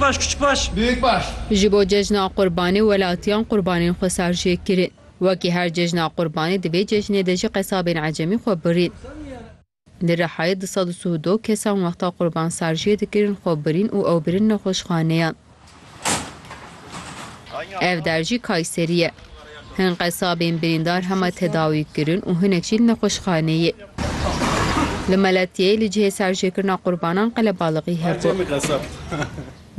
Baş kiçik baş. Büyük baş. Ji bo cejna Qurbanê welatiyan qurbanên xwe sar jê kirin. Wekî her cejna Qurbanê di vê cejnê de jî qesabên ecemî xwe birîn. Li Rihayê du sed û sih û du kesan wexta qurban sar jê dikirin xwe birîn û ew birin nexweşxaneyan. Ev der jî Kayserî ye. Hin qesabên birîndar hema tedawî kirin û hinek jî li nexweşxaneyê. Li Meletiyeyê li cihê serjêkirina qurbanan qelebalixî hebû.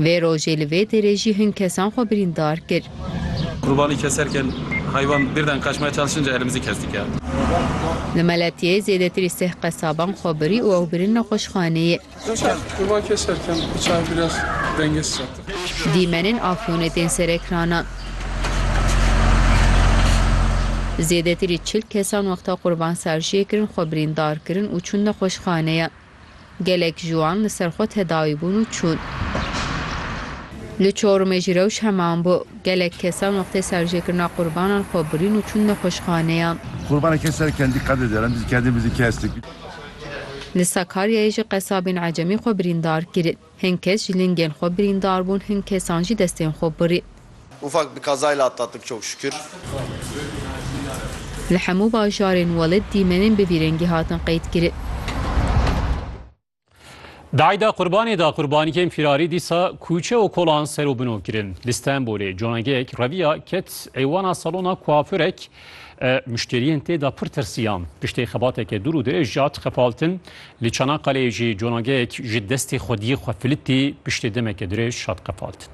Vê rojê li vê derê jî hin kesan xwe birîndar kir. Li Meletiyeyê zêdetirî seh qesaban xwe birî û ew birin nexweşxaneyê. Dîmenên Afyonê tên serekranan. Zêdetirî çil kesan wexta qurbansarijiyê kirin xwe birîndar kirin û çûn nexweşxaneyan. Gelek ji wan li ser xwe tedawî bûn û çûn. Li Çorumê jî rewş heman bû. Gelek kesan wextê serijêkirina qurbanan xwe birîn û çûn nexweşxaneyan. Qurbaneke serkendî qedê deran dî dikerdin vî dikestik. Li Sakaryayê jî qesabên ecemî xwe birîndar kirin. Hin kes ji lingên xwe birîndar bûn, hin kesan jî destên xwe birîn. Ufak bi kazayla atlattık çok şükür. Li hemû bajarên Welid dîmenên bi vî rengî hatin qeydkirin. Di Eyda Qurbanê de qurbanîkên fîrarî dîsa kûçe û kolan ser û bino kirin. Li Stenbolê conageyek reviya ket êwana salona kuafurek, Muşteriyên tê de pir tirsiyan. Piştê xebateke dûr û dirêj jat xepaltin. Li Çanakkaleê jî conageyek ji destê xwediyê xwe filitî piştê demeke dirêj hat xepaltin.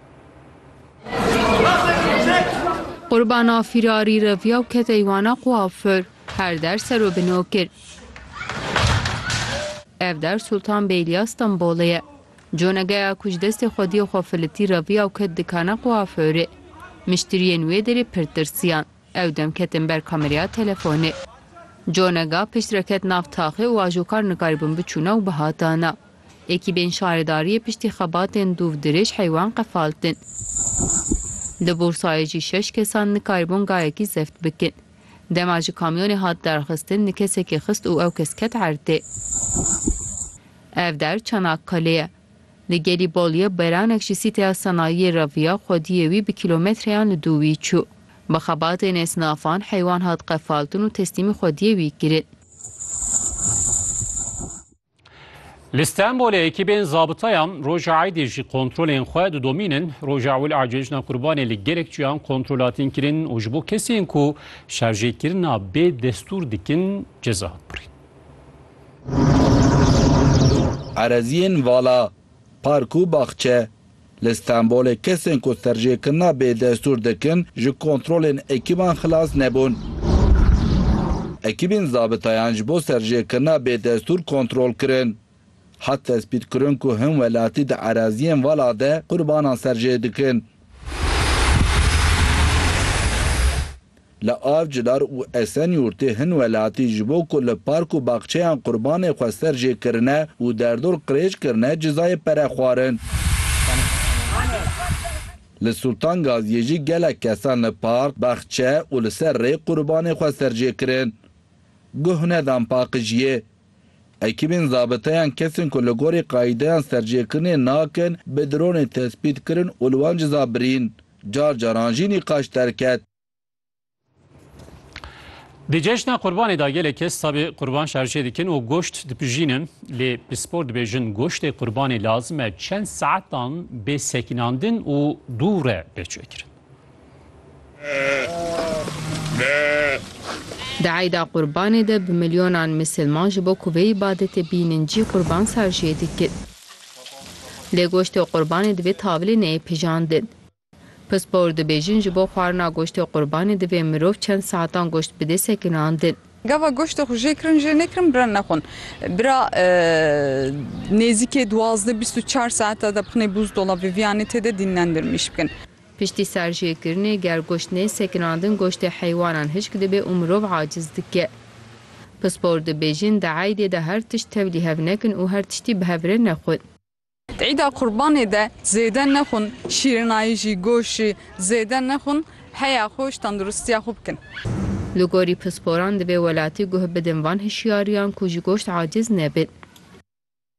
Qurbana fîrarî reviya û ket eywana kuafur. Her der ser û bino kir. Ev der Sultan Beyliya Stenbolê ye. Conegeya ku ji destê xwediyê xwe filitî reviya û ket dikana kuafûrê, miştiriyên wê derê pir tirsiyan. Ew dem ketin ber kamereya telefonê. Conega pişt re ket nav taxê û ajokar nikaribûn biçûna û bihatana. Ekîbên şaredariyê piştî xebatên dûv dirêj heywan qefaltin. Li Bursayê jî şeş kesan nikaribûn gayekî zeft bikin. Dema ji kamyonê hat derxistin ni kesekê xist û ew kes ket erdê. Ev der Çanakkalê ye. Li Gelîboliyê beranek ji sîteya senayiyê re viya xwediyê wî bi kîlometreyan li dû wî çû. Bi xebatê nêsnafan heywan hat qefaltin û teslîmî xwediyê wî kirin. Li Stenbolê ekîbên zabitayan roja Eydê jî kontrolên xwe didomîn in. Roja ewil a cejna Kurbanê li gelek çiyan kontrolatîn kirin û ji bo kesên ku şerjêkirina bê destûr dikin ceza hat birîn. Ereziyên vala, park û baxçe, Li Stenbolê kesên ku serjêkirina bêdestûr dikin ji kontrolên ekîban xilas nebûn. Ekîbên zabitayan ji bo serjêkirina bêdestûr kontrol kirin. Hat tespîtkirin ku hin welatî di eraziyên vala de qurbanan serjê dikin. Li Avcılar û Esenyurtê hin welatî ji bo ku li park û baxçeyan qurbanê xwe ser jê kirine û derdor qirêj kirine cizayê pere xwarin. Li Sultan Gaziyê jî gelek kesan li park, baxçe û li ser rê qurbanê xwe ser jê kirin. Guh nedan paqijiyê. Ekîbên zabiteyan kesên ku li gorî qayîdeyan serjêkirinê nakin bi dronê tespît kirin û li wan ciza birîn. Car caran jî nîqaş derket. Di cejna qurbanê de gelek kes tabê qurban şarjê dikin û goşt dipijînin. Lê pispor dibêjin goştê qurbanê lazim e çend saetan bê sekînandin û dû re bê çêkirin. Di eyda qurbanê de bi milyonan misilman ji bo ku vê îbadetê bînin cî qurban şarjê dikin. Lê goştê qurbanê divê tavilê neyê pijandin. Pispor dibêjin ji bo xwarina goştê qurbanê divê mirov çend saetan goşt bidê sekinandin. Gava goştê xwe jê kirin jê nekirin bira nexwin. Bira nêzîkê duwazdeh bîst û çar saeta de bixinê bûzdola viviyanê tê de dînlendirmîş bikin. Piştî serjêkirinê ger goşt nê sekinandin goştê heywanan hişk dibe û mirov aciz dike. Pispor dibêjin di eydê de her tişt tevlî hev nekin û her tiştî bi hev re nexwin. Di eyda qurbanê de zêde nexwin, şîrinayî jî, goşt jî zêde nexwin, heya xwe ji tendirustiya xwe bikin. Li gorî pisporan divê welatî guh bidin van hişyariyan ku ji goşt aciz nebin.